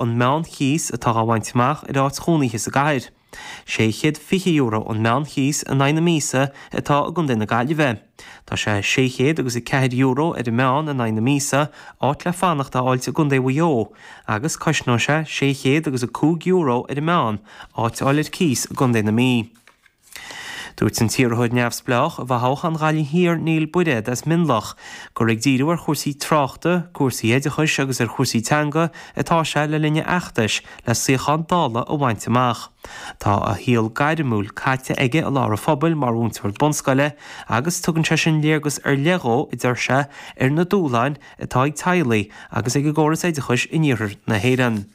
an meán chíos atá á bhaint amach ar áit chónaithe sa gcathair. €620 an meán chíos in aghaidh na míosa atá i gContae na Gaillimhe. Tá sé €604 ar an meán in aghaidh na míosa, áit le fanacht a fháilt i gContae Mhaigh Eo, agus cosnaíonn sé €605 ar an meán, áit a fháil ar cíos i gContae na Mí. Dúirt an t-iarrthóir neamhspleách i bhfothoghchán Ghaillimh Thiar Niall Bairéad as Mionloch gur ag díriú ar chúrsaí tráchta, cúrsaí oideachais agus ar chúrsaí teanga atá sé le linn a fheachtais le suíochán Dála a bhaint amach. Tá a shaol gairmiúil caite aige i lár an phobail mar mhúinteoir bunscoile agus tugann sé sin léargas ar leith dhó, a deir sé, ar na dúshláin atá ag teaghlaigh agus ag an gcóras oideachais in iarthar na hÉireann.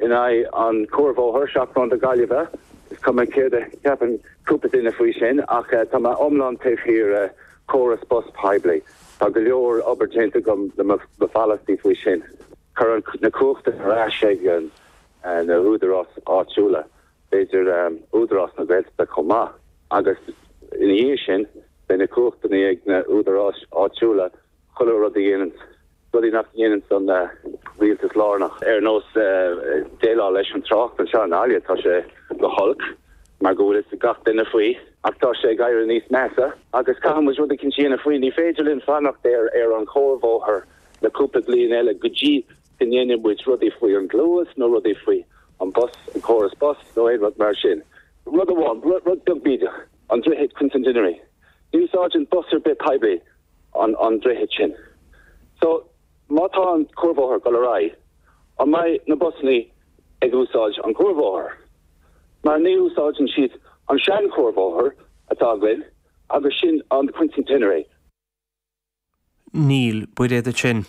in aghaidh an chuarbhóthair, seachród na Gaillimhe. Is cuma céard a cheapann cúpla duine faoi sin, ach tá mé iomlán taobh thiar de chóras bus poiblí. Tá go leor obair déanta agam le mo pholasaí faoi sin. Cuir na cumhachtanna ar ais ag na húdaráis áitiúla, b'fhéidir Údarás na Gaeltachta chomh maith, agus ina dhiaidh sin beidh na cumhachtanna ag na húdaráis áitiúla chuile rud a dhéanamh, rudaí nach ndéanann an rialtas lárnach, ar nós déileáil leis an trácht anseo i nGaillimh. Tá sé go holc mar go bhfuil fhios ag gach duine faoi, ach tá sé ag éirí níos measa agus caithfidh muid rud éicint a dhéanamh faoi. Ní féidir linn fanacht ar an chuarbhóthar le cúpla bliain eile go dtí go ndéanann muid rudaí faoi an Gluas nó rudaí faoi an bus, an córas bus nó aon rud mar sin. Rud amháin, rud beag bídeach, an droichead Quincentenary. Ní úsáideann bus ar bith poiblí an droichead sin. So, má tá an cuarbhóthar ag dul ar aghaidh, an mbeidh na busannaí ag úsáid an cuarbhóthar? Mar ní úsáideann siad an sean-chuarbhóthar atá againn agus sin an Quincentenary. Niall Bairéad ansin.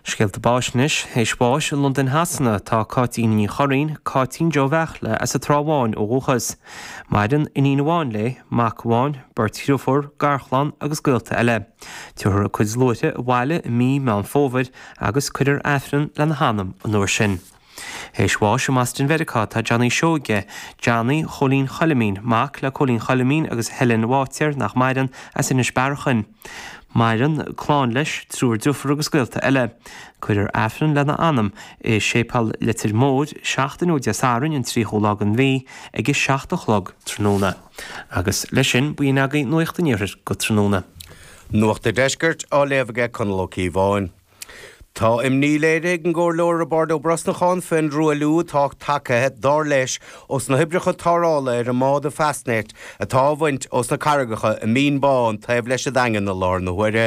Scéalta Báis Anois théis bháis i Londain Shasana tá Cáitín Ní Churraoin, Cáitín Joe Bheairtle, as an Trá Bhán ó dhúchas. Maireann iníon amháin léi, mac amháin, beirt dhriofúr, garchlann agus gaolta eile. Tiubharfar a cuid luaithre abhaile i mí Meán Fómhair agus cuirfear Aifreann lena hanam an uair sin. Théis bháis i mBoston Mheiriceá tá Johnny Seoige, Johnny Chóilín Choilimín, mac le Cóilín Choilimín agus Helen Bháitéar, nach maireann, as Inis Bearachain. Maireann clann leis, triúr deirfiúr agus gaolta eile. Cuirfear Aifreann lena anam i Séipeal Leitir Móir, seachtain ó Dé Sathairn an 30ú lá den mhí, ag a seacht a chlog tráthnóna. Agus leis sin b'in agaibh Nuacht an Iarthair go tráthnóna. Nuacht a' Deiscirt á léamh ag Conall Ó Cíobháin. Tá imní léirithe ag an gComhairleoir Roibeárd Ó Brosnacháin faoin dtruailliú atá tagtha, dar leis, ós na hoibreacha tarrthála ar an mbád an Fastnet atá á bhaint ós na carraigeacha i Binn Bán taobh leis an Daingean i láthair na huaire.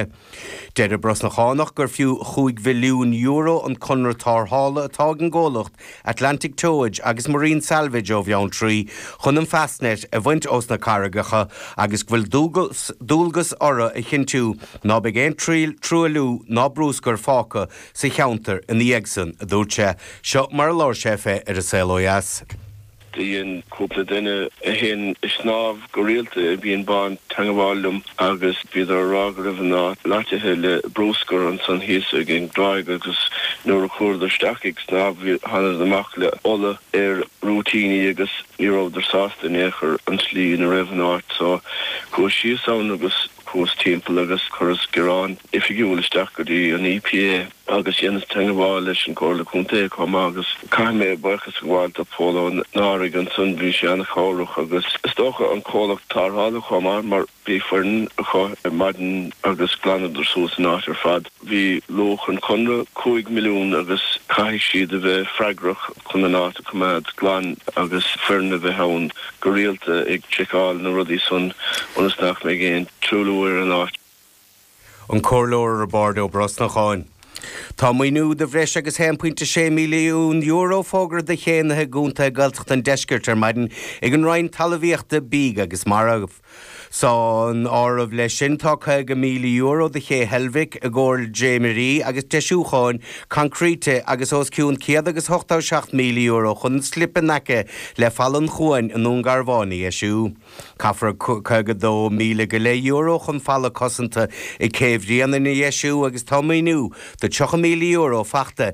Deir an Brosnachánach gur fiú €5 mhilliún an conradh tarrthála atá ag an gcomhlacht Atlantic Towage agus Marine Salvage ó Bheanntraí chun an Fastnet a bhaint os na carraigeacha agus go bhfuil dualgas orthu a chinntiú ná beidh aon truailliú ná bruscar fágtha sa cheantar ina dhiaidh san, a dúirt sé. Seo mar a labhair sé féin ar An Saol ó dheas. Do dhein cúpla duine a théann ag snámh go rialta i mBinn Bán teangabháil liom agus bhíodar ag rá go raibh an áit loitithe le bruscar ansan thíos ag an dtráigh agus nuair a chuadar isteach ag snámh thánadar amach le ola ar a rúitíní agus ní rabhadar sásta in aon chor an tslí ina raibh an áit so chuas síos ann agus chuas timpeall agus chuireas gearán oifigiúil isteach go dtí an EPA. agus dheineas teangabháil leis an gComhairle Contae comh maith agus caithfidh mé buíochas a ghabháil do Phól Ó Neáraigh ansan, bhí sé ana-chabhrach agus is dócha an comhlacht tarrthála comh maith mar bhí foireann acu ar maidin agus ghlanadar suas an áit ar fad. Bhí luach an chonartha cúig milliún agus caithfidh siad a bheith freagrach chun an áit a choimeád glan agus foireann a bheith ann go rialta ag seiceáil na rudaí san ionas nach mbeidh aon truailliú ar an áit. An Comhairleoir Roibeard Ó Brosnacháin. Tá maoiniú de bhreis agus €1.6 milliún fógartha do chéanna i gcontaetha Ghaeltacht an Deiscirt ar maidin ag an Roinn Talmhaíochta, Bídh agus Mara. San áireamh leis sin tá €50,000 do Ché Heilbhic i gcomhair dréimirí agus deisiúcháin coincreíte agus os cionn €187,000 chun an slip in aice le Falla an Chuain i nDún Garbhán a dheisiú. Caithfear €52,000 go leith euro chun falla cosanta i gCé Bhréanainn a dheisiú agus tá maoiniú de €30,000 faighte